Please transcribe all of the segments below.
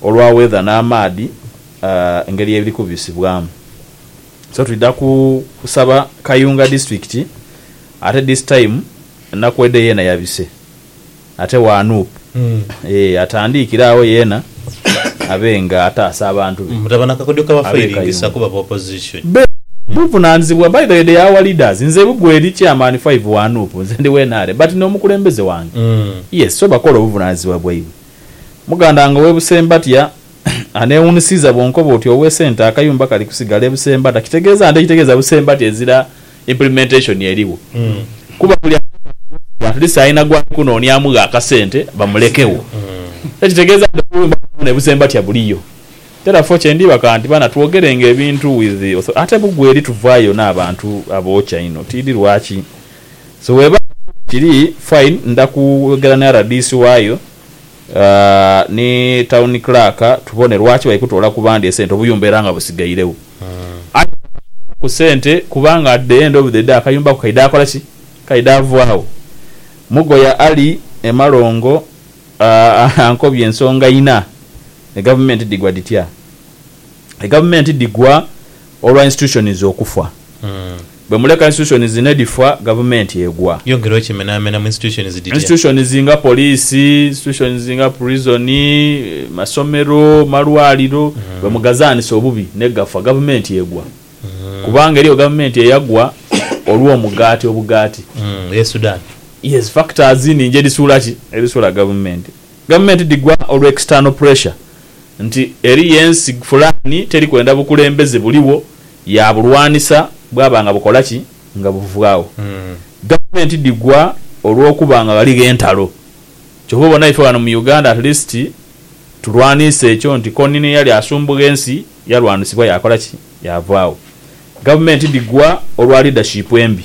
olwa weather n'amaadhi engeri ebiri kubisibwamu so twidha kusaba Kayunga district ate this time Nakwede yeena yabise ate wa Nup eeh atandiikire agho yeena abe nga ataasa abantu be Mutaba na kakodyo kabafairingisa kuba ba opposition. Be buvunanizibwa by the way they are our leaders nze bugwe eri chairman five wa Nup nze ndi wa nrm but nomukulembeze wange yes so bakola obuvunanizibwa bwaibwe. Mugandanga ow'e Busembatya aneewuunisiiza bw'onkoba oti ow'e Centre akayumba kali kusigala e Busembata kitegeeza nte ekitegeeza Busembatya ezira implementation erigho kuba buli ateekamu eby'okusigala at least alina gw'ali kunoonyaamugho akasente bamulekewo so ekitegeeza nti obuyumba bwona e Busembatya buliyo therefore kye ndiibaka nti baana twogerenga ebintu with author ate bugweri tuvaayo n'abantu abookya inho tiidhi lwaki So webanga sure kiri fine nda kwogera ni rdc wayo ni town clerk tubone lwaki bali kutoola ku bandi esente obuyumba era nga busigairegho. Aye nga bakitola ku sente kubanga at the end of the day akayumba ako kaidha kola ki? Kaidha vaagho. Mugoya Ali e Malongo ankobye ensonga inha, egavumenti dhigwa dhitya? Egavumenti dhigwa Olwa institutions okufa. Bwe muleka institutions nedhifa, gavumenti egwa. Yongera okimenamena mu institutions dhitya? Institutions nga poliisi, institutions nga prison, masomero, malwaliro bwe mugazaanisa obubi negafa, gavumenti egwa. Kubanga eriyo gavumenti eyagwa olw'omugaati, obugaati. Eye Sudan. Yes, factors ningi edhisuula ki? Edhisuula gavumenti. Gavumenti dhigwa olwa external pressure nti eriyo ensi fulaani teri kwenda bukulembeze buligho yaabulwanisa bwaba nga bukola ki? Nga buvaagho. Gavumenti dhigwa olw'okuba nga ghaligho entalo. Kyova obona ife ghano mu Uganda at least tulwaniisa ekyo nti koni n'eyali asumbugha ensi yalwanisibwa yaakola ki? Yaavaagho. Gavumenti dhigwa olwa leadership embi.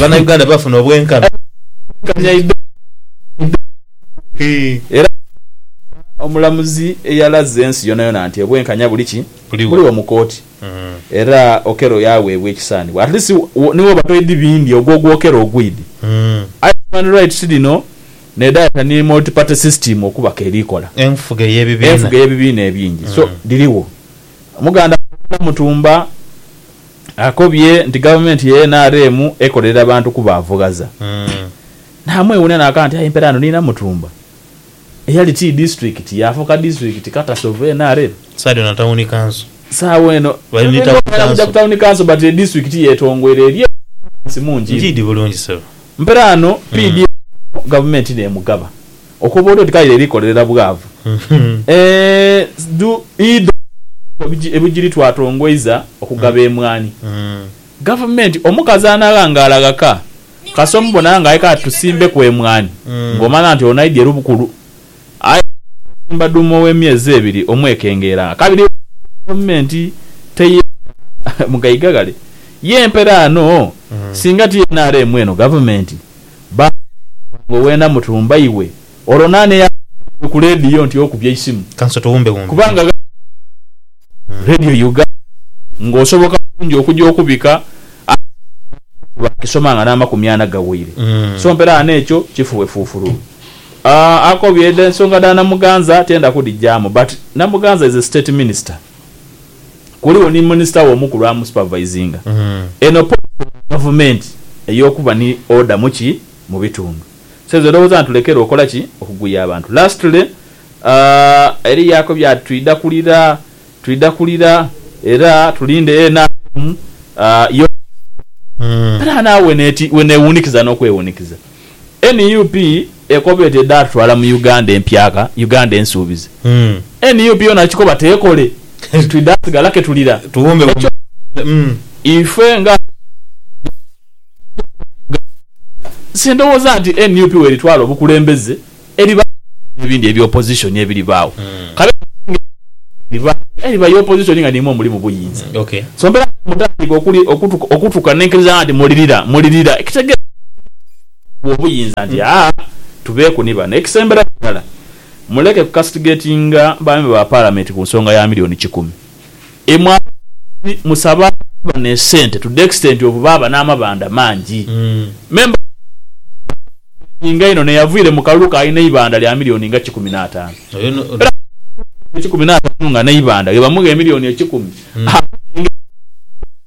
Banauganda bafuna obwenkanya eidhembe era nga Musaadha omulamuzi eyalaze ensi yonayona nti obwenkanya buli ki? Buligho mu kooti era Okello yaweebwa ekisaanibwa at least ni woba toidhi bindi ogwo ogwa Okello ogwidhi aye human rights dhino nedhayeta ni multi party system okuba k'eri kola enfuga ey'ebibiina ebingi so dhirigho Omuganda Muwenda Mutumba akobye nti Gavumenti ye nrm ekolerera bantu kuba avughaza n'amwewuunia n'akaaba nti aye empera eno ni Namutumba eyali ti disitulikiti yaafuuka disitulikiti katasi ovu nrm. Saidi ono tawuni kanso. Sawa eno tuyinza okumanya kugya ku tawuni kanso but edisitulikiti yetongoire eri eyo enansi mungi inho. Njiidi bulungi sebo. Mperaano pdf eno Gavumenti n'emugaba. Okoba otyo nti kale erikolerera bwavu eeh dhu ebugiri twatongoiza okugaba emwani gavumenti omukazi anaghangala ghaka kasita omubona nga aye kale tusimbeku emwani nga omala nti ono aidye lubukulu aye bwosimba duuma owemyezi ebiri omwekengera akabiri gavumenti teye mugaiga ghale ye mperaano singa ti nrm eno gavumenti. Bambi wange wena mutumba iwe olwo nani eyakugambye iwe ku ledio nti okubye eisimu kubanga ghaligho abamanyi radio uganda nga osoboka bulungi okuja okubika aye ekibaddewo kyo bakisoma nga namakumi ana gaweire so mperaano ekyo kifuwe fufululu Aah akobye ensonga dha Namuganza tiyenda kudijamu but Namuganza is a state minister. kuligho ni Minisita we omukulu amusupervisinga. Eno policy ya gavumenti eyokuba ni order mu ki? Mu bitundu. So ezo ndowooza ntulekere okola ki? Okuguya abantu. Lastly, aah, eriyo ako bya twidha kulira, twidha kulira era tulinde NRM, aah, yo. Era naawe weneewunikiza n'okwewunikiza. Nup ekoba eti edha tutwala mu Uganda empyaka, Uganda ensuubize. Nup yona akikoba tekole nti twidha sigala ketulira. Ekyo ife nga abantu abali mu Uganda, sindhowooza nti nup weritwala obukulembeze. Eriba n'ebibiina ebindi ebya opozisoni ebiribaagho, kabe kasinge ebyo nga teribaagho, era eriba ya opozisoni nga n'imwe muli mu buyinza. So mpeera kale mutandike okutuka n'enkiriza nga nti mulirira, mulirira, ekitegeeza okuwa obuyinza nti, Aa, tubeeku ni bano. Ekisemberayo irala, muleke kucastigatinga baami ba Paalamenti ku nsonga ya milioni kikumi. Imwe abasabi musaba abantu bano esente to the extent of baaba n'amabanda mangi. Me mbaza Mukama ono amuspendinga inho n'eyavaire mu kalulu ka alina eibanda lya milioni nga kikumi n'ataanu. Era buli muntu alina milioni kikumi n'ataanu nga n'eibanda bwe bamugha emilioni ekikumi, abona engeri gy'asobola okugula.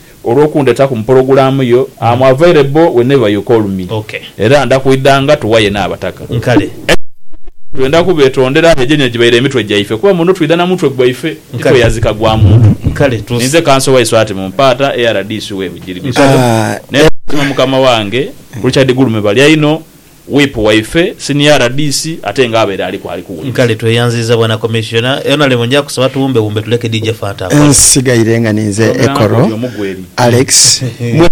Olw'okundetaku mu pologulaamu yo, am available whenever you call me. Era nda kwidhanga tughaye n'abataka. Ekizibu kiliku twenda kubetondera aye gyene gibaire emitwe gyaife kuba muno twidha na mutwe gwaife ti kweyazika gwa muntu. Ninze Kanso wa Iswati mu Mpaata e rdc w'e Bugiri Bisolo n'etuula mu Mukama wange Richard Gulume balya inho. Whip waife, Senior rdc ate nga abaire aliku ali kuwuliriza. Kale tweyanziiza Bwana Commissioner. Honorable nja kusaba tuwumbewumbe tuleke DJ Fanta akole. Nsigaire nga ninze Ekoro Alex mwena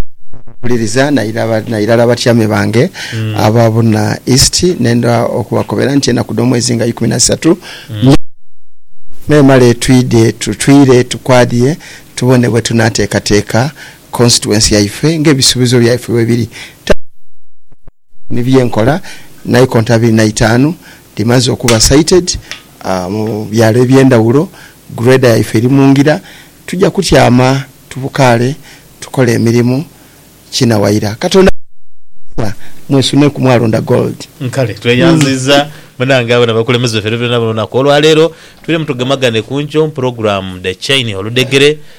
abawuliriza nairala nairala abatyame bange aba Buna East nenda okubakobera nti enaku dh'omwezi nga ikumi nasatu nyowe n'enaku nemale twidhe tutwire tukwadhie tubone bwetunateekateeka constituency yaife nga ebisubizo byaife bwebiri tayinza kukola ni byenkola naikonto abiri na itaanu dhimaze okuba sited mu byalo ebyendhawulo grader yaife eri mungira tuja kutyama tubukaale tukole emirimu kina waira katonda abawe omukisa mwesuneku mwalonda gold. Kale tweyanziza munange abo nabakulemeze baffe era byona bino lunaku olwaleero tubeire mutugemagane kunkyo mu program The Chain Oludhegere